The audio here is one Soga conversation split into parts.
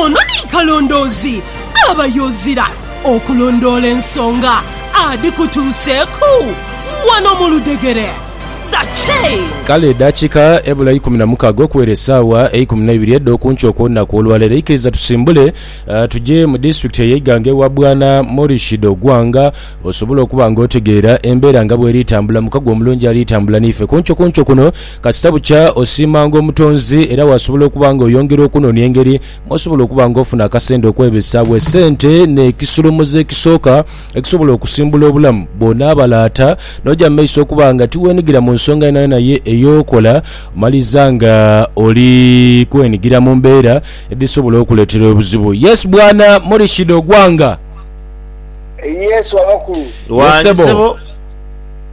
Ono ni kalondoozi aba y'ozira okulondoola ensonga adhikutuuseeku wano mu ludhegere. The Chain. Kale edakika ebula eikumi na mukaga okuwera esawa eikumi neibiri edhokunkyo okwolunaku olwalero eikiriza tusimbule tuje mu disitulikiti eye Iganga ewa bwana Morishid Ogwanga osobole okuba nga otegeera embera nga bweri tambula mukago omulungi alitambula naife kunkyo kunkyo kuno Kasita bukya osiimanga Omutonzi era wasobola okuba nga oyongera okunoonia engeri mw'osobola okuba nga ofuna akasente okwebesagho. Esente n'ekisolomoza ekisooka ekisobola okusimbula obulamu. Bw'onaaba laata n'oja mu maiso okuba nga tiweenigira mu nsonga yonayona ye ey'okola, omaliriza nga oli kwenigira mu mbeera edhisobola okukuleetera obuzibu. Yes Bwana Murishid Ogwanga. Yes Wabakulu. Yes Sebo.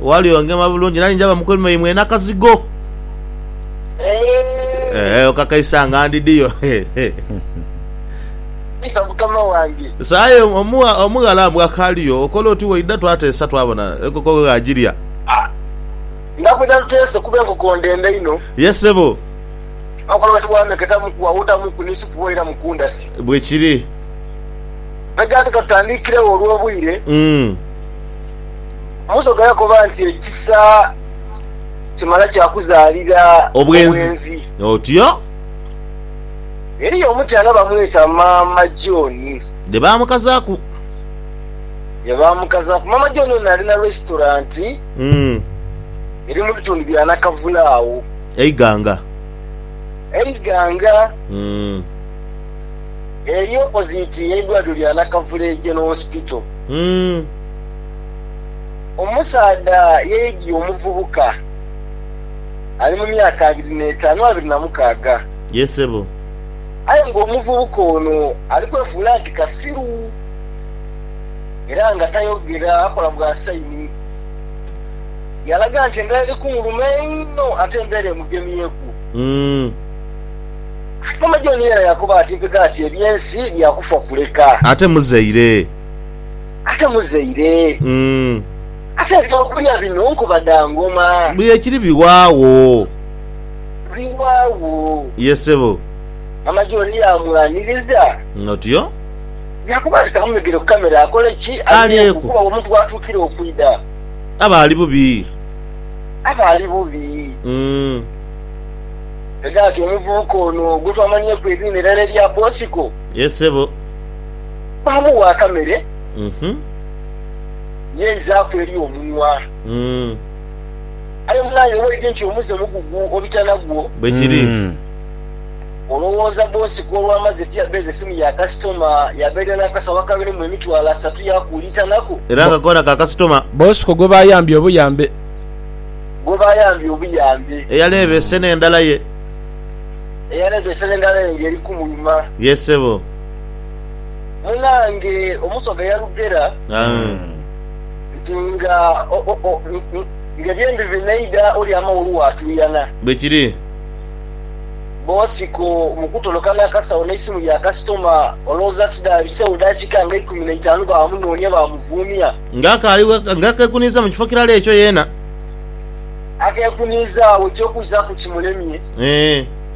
Ghali ongema bulungi, nani njaba mukulu mwaimwe nakazigo. Eeh okakaisa nga ndidiyo. Isa mukama wange. So aye omugha omughala mbu akaaliyo okola oti waidha twateesa twabona enkoko ghe agirya. Nga bwedha tuteese kuba enkoko ndende inho. Ye sebo. Akola oti bwameketamuku awutamuku ni supu bwoira mu kundasi. Bwekiri. Bwegati katutandiikiregho olwobwire. Umm. Musoga yakoba nti, Ekisa kimala kya kuzaalira obwenzi. Otyo. Eriyo omukyala bamweta Maama John. Dhe baamukazaaku. Dhe baamukazaaku. Maama John ono ali na resitoranti eri mu bitundu bya Nakavule agho. E Iganga. E Iganga. Eri opoziti y'eidwaliro lya Nakavule General Hospital. Omusaadha yaidhie omuvubuka ali mu myaka abiri n'etaanu, abiri na mukaaga. Ye sebo. Aye ng'omuvubuka ono ali kwefuula nti kasiru era nga tayogera, akola bwa sayini, yaalaga nti endhala eri kumuluma einho ate embeera emugemyeku. Ate maama John yena yaakoba ati, Mpegho ati eby'ensi bya kufa kuleka. Ate muzaire. ate muzaire. Ate eby'okulya bino nkuba dha ngoma. Bwekiri biwaagho. Biwaagho. Ye sebo. Maama John yaamwaniriza. Otyo. Yaakoba nti, Kamumegere ku kamera akole ki? Alyeku. Kuba owo omuntu w'atuukira okwidha. Aba ali bubi. Aba ali bubi. Ghegati omuvubuka ono gwe twamanhieku eriina erala erya Bosiko. Ye sebo. baamuwa akamere, yaizaaku eri omunwa. Aye mwana, owulidde nti omuze mugugu obitana gwo? Bwe kiri. Olowooza bbosi ku olwamaze tiyabeeza esimu ya kasitoma, yabeera n'akasawo akaberemu emitwalo asatu yaakuulitanaku? Era nga koona ka kasitoma. Bbosi ko gwe baayambye obuyambe. Gwe baayambye obuyambe. Eyaleebeese n'endala ye. Eyaleebeese n'endala ye ng'eri kumuluma. Yee, ssebo. Munange omusoga yalugera nti nga ebyembi binaidha olyama wo olwo atuuyana. Bwekiri. Bosiko mu kutoloka n'akasawo n'eisimu ya kasitoma olowooza tidhabisewo dakiika nga eikumi na itaanu baamunoonia baamuvuumia. Nga akaali nga akekuniiza mu kifo kirala ekyo yeena. Akekuniiza agho eky'okuzaku kimulemye. Eeh.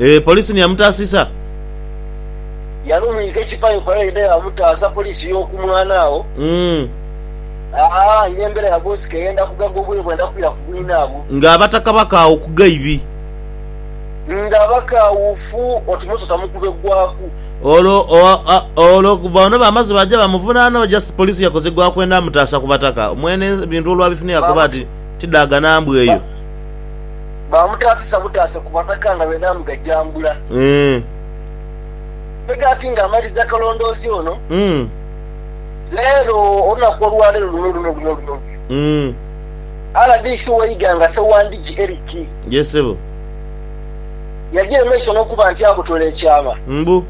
Eeh police ni yamutaasisa? Yali omuyighe kipayopayo yena yamutaasa police yoku mwana agho aah nembera yabonsiko eyenda kugaga obwire bwenda kwira ku bwinabwo. Nga abataka bakaghu ku gaibi. Nga bakaawuufu oti muto tamukube gwaku. Olwo olwo boona bamaze baja bamuvunana oba just police yakoze gwakwenda mutaasa ku bataka? Mwene ebintu olwabifunye yakoba ati tidaaga nambwa eyo. Baamutaasisa butaase ku bataka nga beedha mugajambula. Mpega ati nga amaliza akalondoozi ono, leero, olunaku olwaleero luno luno luno luno luno, rdc owe Iganga Ssewandigi Eric yagira emaiso n'okuba nti abotola ekyama mbu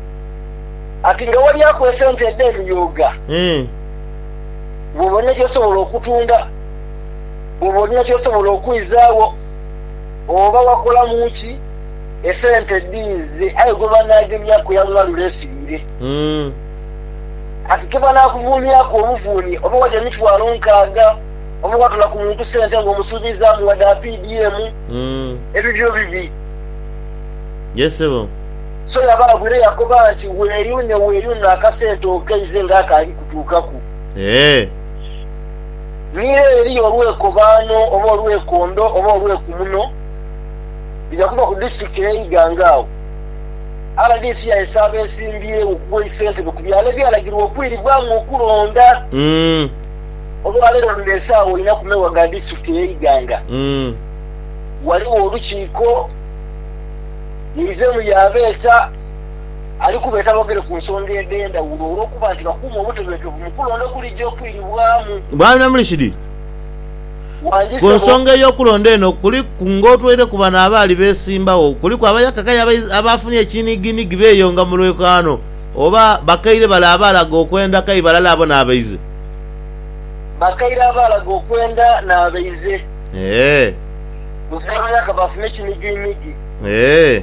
ati nga walyaku esente edh'emiyooga ng'obona gy'osobola okutunda. Bwoba olina kyosobola okwizaagho oba wakolamu ki, esente dhiize aye gwebanagemyaku yaghuwa lule nsiriire. Kati kebanakuvuuniaku obuvuuni oba waja emitwalo nkaaga oba watola ku muntu sente nga omusuubizaamu wade apdm, ebibyo bibi. Ye sebo. So yabaagwire yakoba nti weeyune weeyune akasente okeize nga akaali kutuukaku. Eeh. Ni ere eriyo olwekobaano oba olwekondo oba olwekumuno bidha kuba ku disitulikiti eya Iganga agho rdc yaesa abesimbyewo okuwa eisentebe ku byalo ebyalagirwa okwiribwamu okulonda. Olwaleero luno esaawa ina ku mewa ga disitulikiti eya Iganga ghaligho olukiiko yaizemu yaabeeta. ali kubeeta boogere ku nsonga edh'endhawulo olw'okuba nti bakuuma obutebenkevu mu kulonda okulija okwiribwamu. Bwana Murshid, Wangi ku ssebo. nsonga ey'okulonda eno kuliku ng'otweire ku bano abaali beesimbagho, kuliku abayakaka aye abaiz abaafunye ekinhiginhigi beeyonga mu lwekaano oba bakaire bale abaalaga okwenda kaye balala abo n'abaize? Bakaire abaalaga okwenda n'abaize. Eeh. Buzabayaka baafuna ekinhiginhigi. Eeh.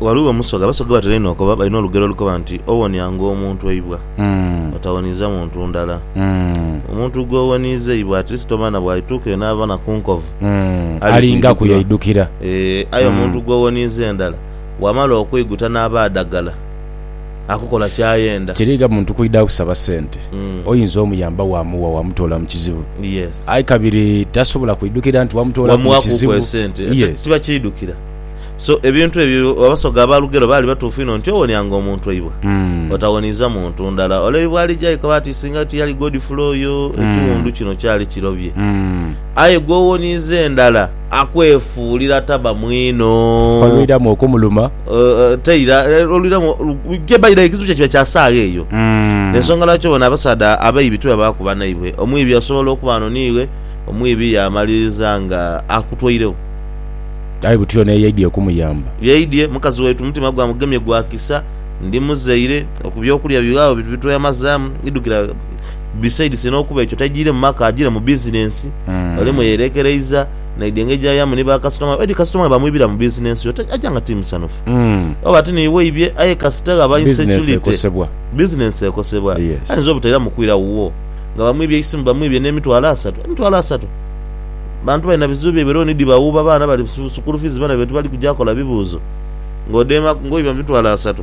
Ghaligho omusoga, abasoga gwebatera einho okoba balina olugero olukoba nti, Owonianga omuntu eibwa, otawoniiza muntu ndala. Omuntu gw'owoniiza eibwa at least oba na bw'alituuka eyo n'abona ku nkovu, alingaku yaidhukira. Aye omuntu gw'owoniiza endala, bw'amala okwiguta n'aba adagala akukola ky'ayenda. Tiriiga muntu kwidha kusaba sente. Oyinza omuyamba waamuwa, waamutoola mu kizibu. Aye kabiri tasobola kwidhukira nti waamutoola ku kizibu. Wamuwa kuuku esente, tibakyidhukira. So ebintu ebyo Abasoga aba Lugero baali batuufu inho nti owonia nga omuntu waibwe, otawoniiza muntu ndala. Ole ni bw'alija yekaba ati singa tiyali Godfrey oyo, ekiwundu kino kyali kirobye. Aye gw'owoniiza endala akwefuulira taba mwino. Olwiramu okumuluma. Ate era olwiramu, kye by the way ekizibu kye kiba kya saagha eyo. Y'ensonga lwaki obona abasaadha abaibi tibabaaku banaibwe. Omwibi asobola okuba ano niiwe, omwibi yaamaliriza nga akutweiregho. Aye butyo n'eyaidye okumuyamba. Yaidye, mukazi waitu omutima gwamugemye gwa kisa. Ndi muzaire, ku by'okulya bighagho ebintu bye tweyamazaamu idhukira. Besides n'okuba ekyo taijiire mu maka, ajiire mu bizinensi. Oli mwe yeerekereiza, naidye engeri gy'ayaamu ni bakasitoma be. Oidhi kasitoma bwe bamwibira mu bizinensi yo, aja nga ti musanhufu. Oba ti niiwe ibye, aye kasita ghaba insecurity, bizinensi ekosebwa. Ayinza obutairamu kwira wuwo nga bamwibye eisimu, bamwibye n'emitwalo asatu. Emitwalo asatu! Bantu balina bizibu byaibwe, looni dhibawuuba, baana bali sukulu fiizi, baana baitu bali kuja kola bibuuzo ng'odheemaku ngoiba mu mitwalo asatu.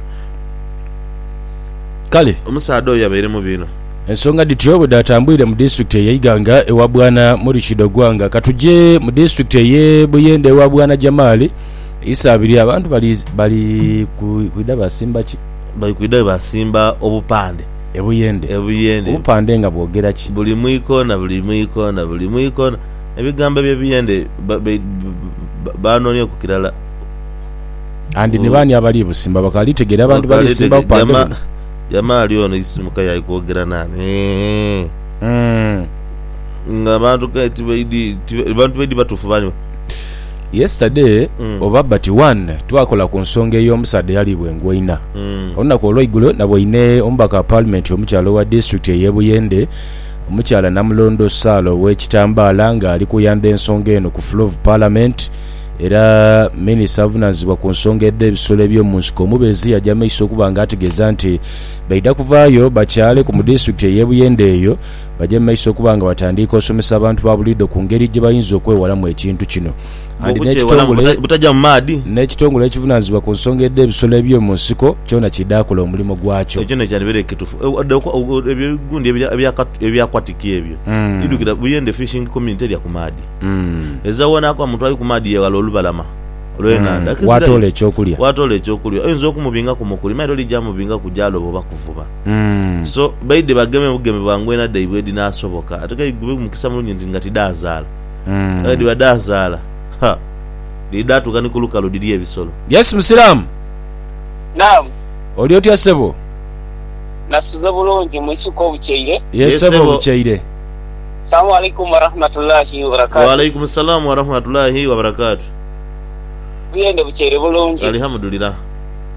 Kale. Omusaadha oyo yabaire mubi inho. Ensonga dhityo bwe dhaatambwire mu disitulikiti ey'e Iganga ewa Bwana Murichid Ogwanga. Ka tuje mu disitulikiti ey'e Buyende ewa Bwana Jamal Isabirye. Abantu bali kwidha baasimba ki? Bali kwidha baasimba obupande. Ebuyende. Ebuyende. Obupande nga bwogera ki? Buli mu ikoona, buli mu ikoona, buli mu ikoona. Ebigambo eby'ebiyende baanoonia ku kirala. And ni baani abali busimba? Bakaali kutegeera abantu bali kusimba bupande buno? Jamaa ali ono isimuka y'ali kwogera naani? Nga abantu kale tibaidhi batuufu bali. Yesterday oba but one twakola ku nsonga ey'omusaadha eyaliibwa engoina. Olunaku olweigulo naboine omubaka wa Palimenti omukyala owa disitulikiti ey'e Buyende, Omukyala Namulondo Sarah Owekitambaala ng'ali kuyandha ensonga eno ku Floor of Parliament era Minisita avunaanyizibwa ku nsonga edh'ebisolo eby'omu nsiko omubezi yaja mu maiso okuba nga ategeeza nti baidha kuvaayo bakyaaleku mu disitulikiti ey'e Buyende eyo Baje mu maiso okuba nga batandiika osomesa abantu ba buliidho ku ngeri gye bayinza okwewalamu ekintu kino. Andi n'ekitongole n'ekitongole ekivunaanyizibwa ku nsonga edh'ebisolo eby'omu nsiko kyona kidhaakola omulimo gwakyo. Ekyo n'ekyandhibaire kitufu ebyo gundi eby'aquatic ebyo idhukira Buyende Fishing Community elya ku maadhi. Eza woonaku omuntu ali ku maadhi yeghala olubalama lw'enhandha. Waatoola eky'okulya. Waatoola eky'okulya oyinza okumubingaku mukuli mailo lija mubingaku gyaloba oba kuvuba. So baidhe bageme bugeme bwa ngwena dhaibwe edhinaasoboka. Ate k'aidhi gube mukisa mulungi nti nga tidhaazaala. Aye bwedhiba dhaazaala, ha, dhiri dhaatuuka ni ku lukalu dhirye ebisolo. Yes musiraamu. Naam. Oli otya sebo? Nasuze bulungi, mwisuke obukyeire? Yes sebo obukyeire. Salamu alaikum warahmatullahi wabarakatuh. Wa alaikum salaam warahmatullahi wabarakatuh. Buyende bukyeire bulungi. Alihamudulilah.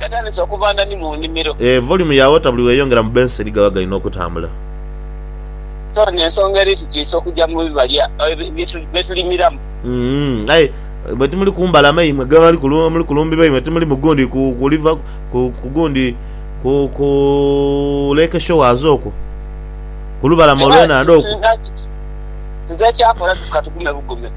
Gatandise okuva ndani mu nimiro. Eeh volume ya water buli weyongera mu benseni gaba galina okutambula. So nensonga eri tutiisa okuja mu bibalya byetulimiramu. Uhmm aye mwe timuli kumbalama imwe ghebali muli kulumbirwa imwe timuli mu gundi ku river ku gundi ku ku lake shores okwo kulubalama olwenhandha okwo. Nze ekyakola katughume bugume.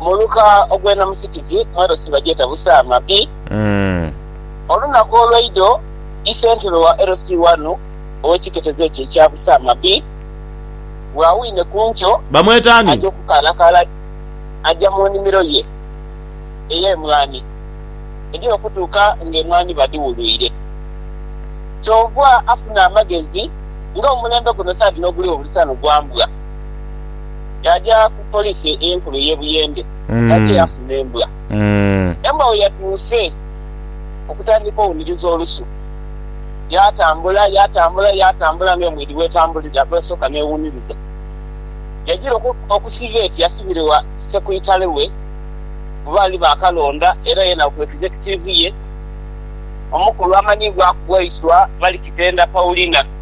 Muluka ogw'enamusikizi mwelo sibagyeta busa mabi. Olunaku olweidho isentebe wa LC wanu ow'ekiketezo ekyo ekya busa mabi bw'awine ku nkyo aja okukaalakaala aja mu nimiro ye ey'emwani egya okutuuka ng'emwani badhiwulwire. Kyoova afuna amagezi nga omulembe guno saadi n'oguliwo buli sano gwa mbwa. yaaja ku poliisi enkulu ey'e Buyende nga aidha yaafuna embwa. Embwa bwe yatuuse okutandika owuniriza olusu, yaatambula, yaatambula, yaatambula ng'emwiidhi bw'etambulira, bw'esooka n'ewuniriza. Yagira okusiiba eti asibirirwa sekuritaale we gwe baali baakalonda era ye n'akuba ekizekitiivu ye omukulu amanhi gwakubwa iswa, Balikitenda Paulina.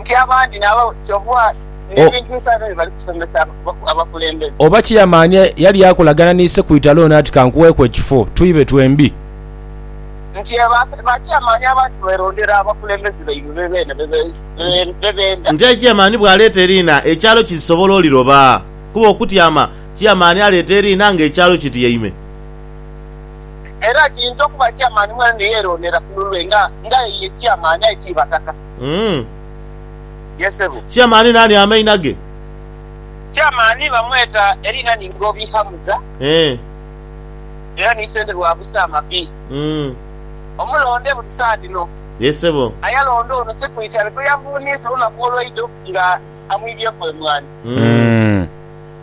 nti abandi nabo kyova n'ebintu bisanhibwa bye bali kusomesa abakulembeze. Oba ki yamanya yali akolagana ni Ssekwitale ono ati kankuweeku ekifo twibe twembi. Nti eba kyamaani abantu beerondera abakulembeze baibwe be beene be beenda. Nti aye kyamaani bw'aleeta eriina ekyalo kizisobola oliroba kuba okutyama kyamaani aleeta eriina ng'ekyalo kityaime. Era kiyinza okuba Chairman mwene ni yeronera ku lulwe nga nga ye ye Chairman aye ti Bataka. Uhmm. Ye sebo. Chairman nani amaina ge? Chairman bamweta erina ni Ngobi Hamza. Eeh. Era ni sente lwabusa amabi. Uhmm. Omulonde buli saa dhino. Ye sebo. Aye alonda ono siku itale gwe yavuniisa olunaku olweidho nga amwibyeku emwanhi. Uhmm.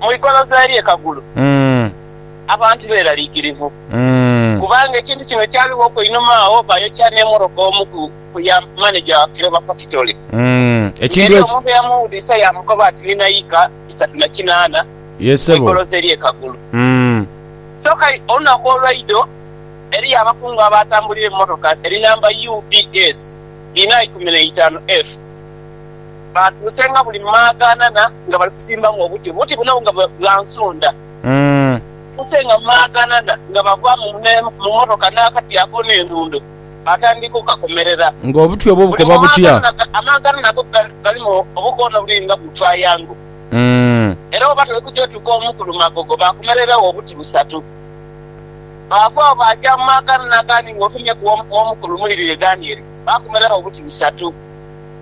Mu igoloza ery'e Kagulu abantu beeraliikirivu kubanga ekintu kino kyaliwoku einhuma agho baayokya n'emoroka omu ku ya maneja wa Kiloba fakitole ng'eriyo omuntu eyamuwudiisa yaamukoba ati ni naika isatu na kinaana mu igoloza ery'e Kagulu. Soka olunaku olwaidho eriyo abakungu abaatambulira emmotoka eri namba UBS inha ikumi na itaanu F. Baatuusenga buli mu maagaanana nga bali kusimbagho obuti. Obuti buno nga bwa nsonda. Baatuusenga mu maagaanana nga bava mu mmotoka n'akati ako n'endundo, baatandika okukakomerera. Ng'obuti obwo bukoba butya? Amaagaanana go galimu obukoona obuli nga bu twayango. Era bwoba toli kugya otuuka omu ku lumagogo, baakomereragho obuti busatu. Baava agho baaja mu maagaanana agandi ng'ofunye ku omu ku lumuli lule gandi ere, baakomereragho obuti busatu.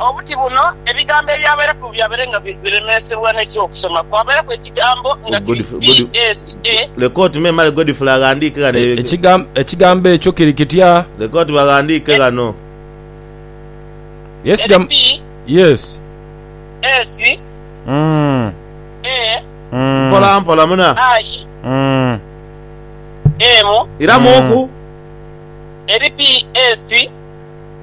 Obuti buno ebigambo ebyabaireku byabaire nga biremeesebwa n'eky'okusoma kwabaireku ekigambo nga kiri BSA. Leka oti me male Godfrey aghandiike ghano. Ekigambo ekyo kiri kitya? Leka oti baghandiike ghano. Eri BSA. Mpola mpola muna. Ayi emu. Iramuuku. Eri BSA.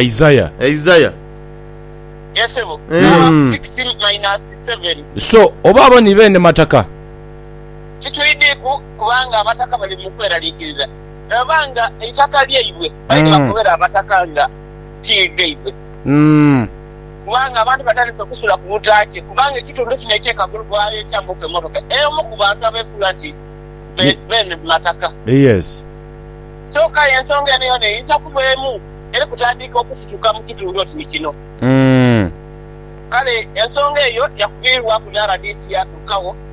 Isaiah. Isaiah. Yes sebo. Mm. 16 minus 7. So oba abo ni beene mataka? Titwidhiku kubanga abataka bali mu kweraliikirira ni baba nga eitaka lyaibwe baidhi Mm. bakobera abataka nga ti gaibwe. Mm. Kubanga abantu batandise okusula ku butaakye kubanga ekitundu kino eky'e Kagulu baayokyaamuku emmotoka ey'omu ku bantu abeefuula nti be- Ye- beene mataka. Yes. Kyoka aye ensonga eno yoona eyinza okuba emu eri kutandiika okusituka mu kitundu oti ni kino. Kale ensonga eyo yakuviirwaku ni rdc yatuukagho.